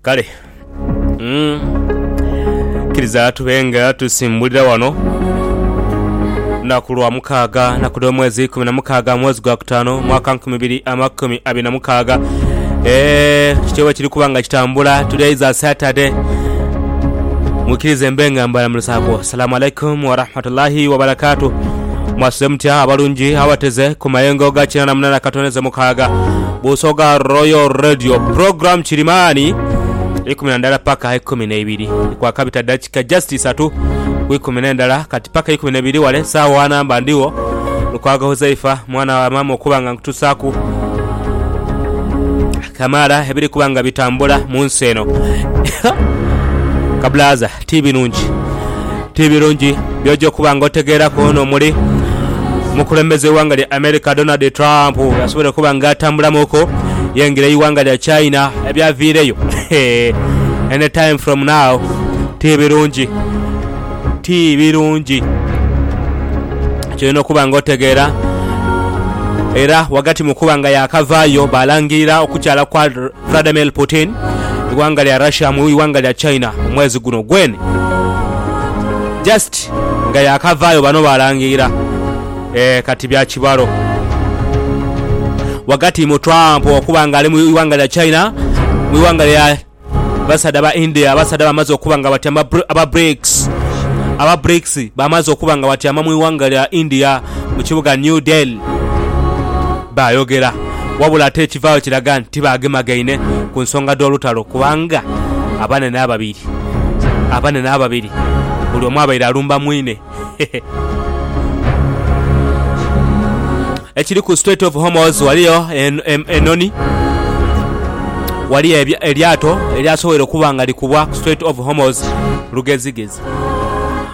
kale mm, kiriza tube nga tusimbulira wano lunaku lwa mukaaga naku dh'omwezi ikumi na mukaaga mwezi gwa kutaano mwaka nkumi ibiri amakumi abiri na mukaaga Eh, kityo bwe kiri kuba nga kitambula tuli aiza saturday mwikirize mbe nga mbalamulisaako Salamu alaikum warahmatullahi wabarakatu mwasuze mutya abalungi abateze ku mayengo ga kinana munana katoneze mukaaga busoga royal radio program kirimani ikumi na ndala paka ikumi neibiri kwakabita dakika just isatu ku ikumi nendala kati paka ikumi nebiri wale saawa wanamba ndiwo lukwago huzaifa mwana wa mama okuba nga nkutusaku kamaala ebiri kuba nga bitambula mu nsi eno kabulaza Ti birungi, ti birungi by'oja okuba nga otegeeraku ono omuli omukulembeze w'eighanga lya America Donald Trump byasobola okuba nga atambulamuuku yaingira eighanga lya China ebyaviireyo any time from now. Ti birungi, ti birungi ky'olina okuba nga otegeera. Era ghagati mu kuba nga yaakavaayo baalangirira okukyala kwa Vladimir Putin, ighanga lya Russia mu ighanga lya China omwezi guno gweni. Just nga yaakavaayo bano baalangiira. Eeh kati bya kibalo. Ghagati mu Trump okuba nga ali mu ighanga lya China, mu ighanga lya basaadha ba India, abasaadha bamaze okuba nga batyama aba Brics, aba Brics bamaze okuba nga batyama mu ighanga lya India mu kibuga New Delhi. Baayogera, wabula ate ekivaayo kiraga nti baagemagaine ku nsonga dh'olutalo kubanga abanene ababiri abanene ababiri buli omu abaire alumba mwine. Ekiri ku Strait of Hormuz waliyo enhonhi waliyo eryato eryasoboire okuba nga likubwa ku Strait of Hormuz lugezigezi.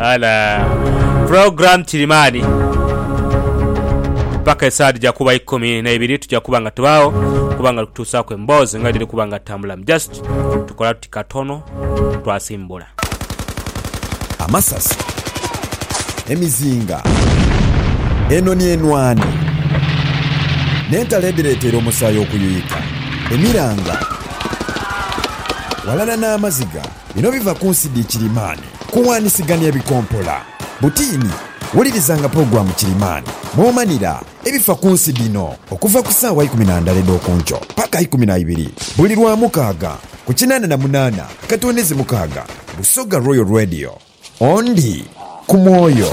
Ala. Program Kirimani. Paka esaadi ja kuba ikumi na ibiri tuja kuba nga tubaawo kuba nga tutuusaaku emboozi nga dhiri kuba nga tambulamu. Just tukola tuti katono twasimbula. Amasasi, emizinga, enoni enwani, n'entalo edhireteera omusaayi okuyuyika, emiranga, ghalala n'amaziga. Bino biva ku nsi dhi kirimaani kuwaanisigania ebikompola. Butiini, wulirizanga pulogulaamu kirimaani mw'omanira ebifa ku nsi dhino okuva ku saawa ikumi na ndhala edh'oku nkyo paka ikumi na ibiri buli Lwamukaaga ku kinaana na munaana akatonezi mukaaga Busoga Royal Radio. Ondi ku mwoyo.